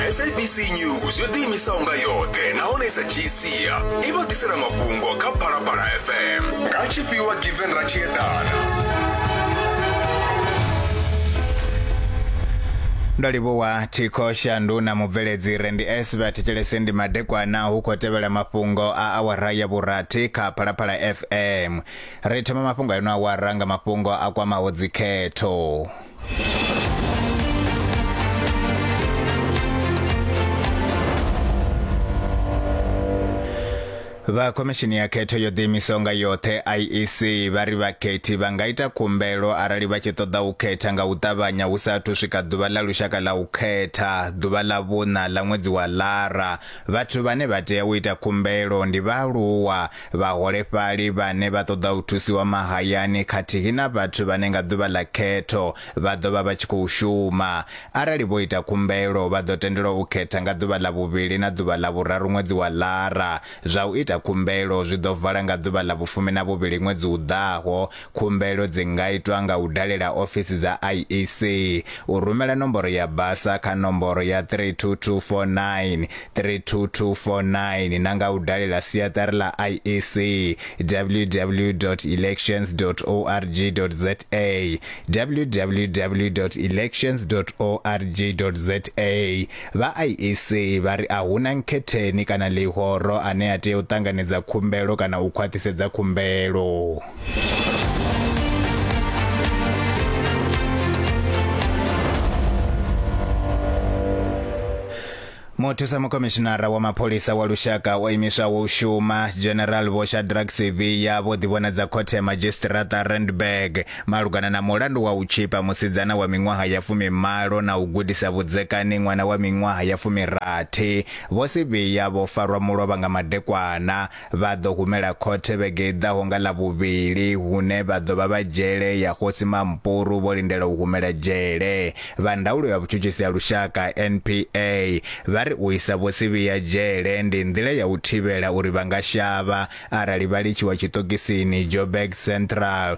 sabc news yo ḓiimisaho nga yoṱhe nahone i sa dzhii sia i vha ḓisela mafhungo kha phalaphala fm nga tshifhiwa given ra tshi eḓana ndo livhuwa thikho shandu na mubveledzi rendi s vha thetshelese ndi madekwana hu khou tevhela mafhungo a awara ya vhurathi kha phalaphala fm ri thoma mafhungo a ino awara nga mafhungo a kwamaho dzikhetho vha khomishini ya khetho yo ḓiimisaho nga yoṱhe iec vha ri vhakhethi vha nga ita khumbelo arali vha tshi ṱoḓa u khetha nga u ṱavhanya hu sa athu swika ḓuvha ḽa lushaka ḽa u khetha ḓuvha ḽa vhuṋa ḽa ṅwedzi wa lara vhathu vhane vha tea u ita khumbelo ndi vhaaluwa Vhaholefhali vhane vha ṱoḓa u thusiwa mahayani khathihi na vhathu vhane nga ḓuvha ḽa khetho vha ḓo vha vha tshi khou shuma. Arali vho ita khumbelo, vha ḓo tendelwa u khetha nga ḓuvha ḽa vhuvhili na ḓuvha ḽa vhuraru ṅwedzi wa Lara. Zwa u ita khumbelo zwi ḓo vala nga ḓuvha ḽa vhufumi na vhuvhili ṅwedzi u ḓaho. Khumbelo dzi nga itwa nga u dalela ofisi dza IEC, u rumela nomboro ya basa kha nomboro ya 32249, 32249 na nga u dalela siaṱari ḽa IEC, www.elections.org.za, www.elections.org.za. Vha IEC vha ri a hu na nkhetheni kana ḽihoro ane a tea u ṱanganedza khumbelo kana u khwaṱhisedza khumbelo. muthusa mukhomishinara wa mapholisa wa lushaka o imiswaho u shuma general vho shadrack sevilla vho ḓivhonadza khothe ya madzhisitirata randburg malugana na mulandu wa u tshipa musidzana wa miṅwaha ya fumimalo na u gudisa vhudzekani ṅwana wa miṅwaha ya fumirathi vho sevilla vho farwa mulovha nga madekwana Vha ḓo humela khothe vhege i ḓaho nga Ḽavhuvhili, hune vha ḓo vha vha dzhele ya Khosi Mampuru vho lindela u humela dzhele. Vha ndaulo ya vhutshutshisi ha lushaka, NPA, vha ri u isa Vho Sibiya dzhele ndi nḓila ya u thivhela uri vha nga shavha arali vha litshiwa tshiṱokisini Joburg Central,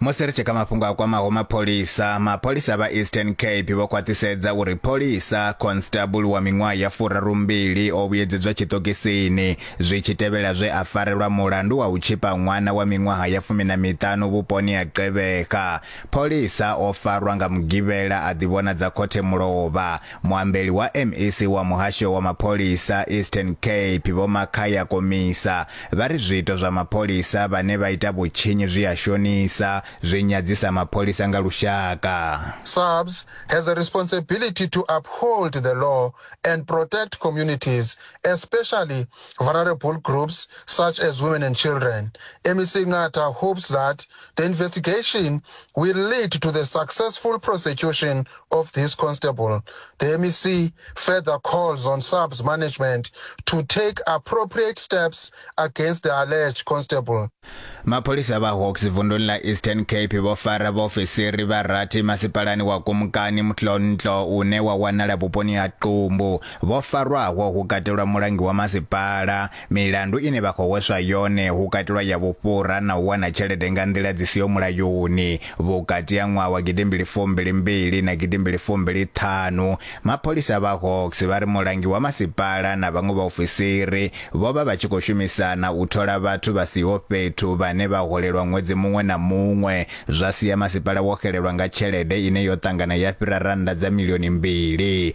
Musi ri tshi kha mafhungo a kwamaho mapholisa, mapholisa vha Eastern Cape vho khwaṱhisedza uri pholisa constable wa miṅwaha ya furarumbili o vhuyedzedzwa tshiṱokisini zwi tshi tevhela zwe a farelwa mulandu wa u tshipa ṅwana wa miṅwaha ya fumi na miṱanu vhuponi ha Qebeha. Pholisa o farwa nga Mugivhela a ḓivhonadza khothe mulovha. Muambeli wa MEC wa muhasho wa mapholisa Eastern Cape Vho Makhaya Komisa vha ri zwiito zwa mapholisa vhane vha ita vhutshinyi zwi a shonisa, zwi nyadzisa mapholisa nga lushaka. SAPS has a responsibility to uphold the law and protect communities, especially vulnerable groups such as women and children. MEC Ngata hopes that The investigation will lead to the successful prosecution of this constable. The MEC further calls on SAPS management to take appropriate steps against the alleged constable. Mapholisa vha Hawks vunduni la Eastern Cape vho fara vhaofisiri vha rathi masipalani wa Kumkani Mtlontlo une wa wanala vhuponi ha Qumbu. Vho farwaho hu katelwa mulangi wa masipala, Milandu ine vha khou hweswa yone hu katelwa ya vhufhura na u wana tshelede nga nḓila dzi siho mulayoni. Vhukati ha ṅwaha wa gidimbili fumbili mbili na gidimbili fumbili ṱhanu, mapholisa vha Hawks vha ri mulangi wa masipala na vhaṅwe vhaofisiri vho vha vha tshi khou shumisana u thola vhathu vha siho fhethu vhane vha holelwa ṅwedzi muṅwe na muṅwe zwa sia masipala wo xelelwa nga tshelede ine yo ṱangana ya fhira rannda dza milioni mbili.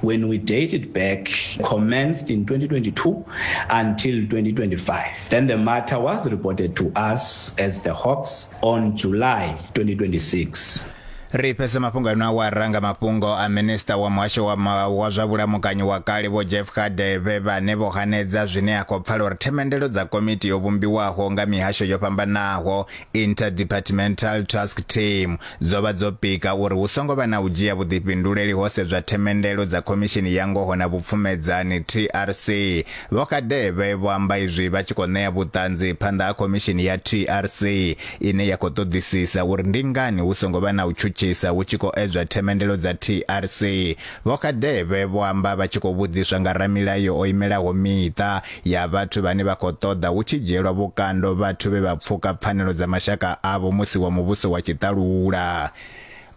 When we date it back, commenced in 2022 until 2025. Then the matter was reported to us as the Hawks on July 2026. ri fhedza mafhungo ano awa ranga mafhungo a minista wa muhasho wa, ma, wa zwa vhulamukanyi wa kale vho jeff khadeve vhane vho hanedza zwine a khou pfala uri themendelo dza komiti yo vhumbiwaho nga mihasho yo fhambanaho Interdepartmental Task Team dzo vha dzo pika uri hu songo vha na u dzhia vhuḓifhinduleli ho sedzwa themendelo dza Khomishini ya Ngoho na Vhupfumedzani, TRC. Vho Kadebe vho amba izwi vha tshi khou ṋea vhuṱanzi phanḓa ha Khomishini ya TRC ine ya khou ṱoḓisisa uri ndi ngani hu songo vha na u tshutshisa hu tshi khou edzwa themendelo dza TRC. Vho Kadebe vho amba vha tshi khou vhudziswa nga ramilayo o imelaho miṱa ya vhathu vhane vha khou ṱoḓa hu tshi dzhielwa vhukando vhathu vhe vha pfuka pfanelo dza mashaka avho musi wa muvhuso wa tshiṱalula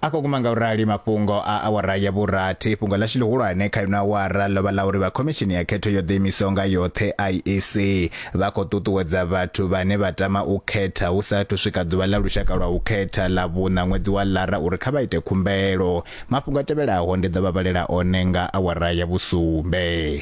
a khou guma nga u rali mafhungo a awara ya vhurathi fhungo ḽashu ḽihulwane kha ino awara ḽo vha ḽa uri vha khomishini ya khetho yo ḓiimisaho nga yoṱhe iec vha khou ṱuṱuwedza vhathu vhane vha tama u khetha hu sa athu swika ḓuvha ḽa lushaka lwa u khetha ḽa vhuṋa ṅwedzi wa lara uri kha vha ite khumbelo mafhungo a tevhelaho ndi ḓo vha vhalela one nga awara ya vhusumbe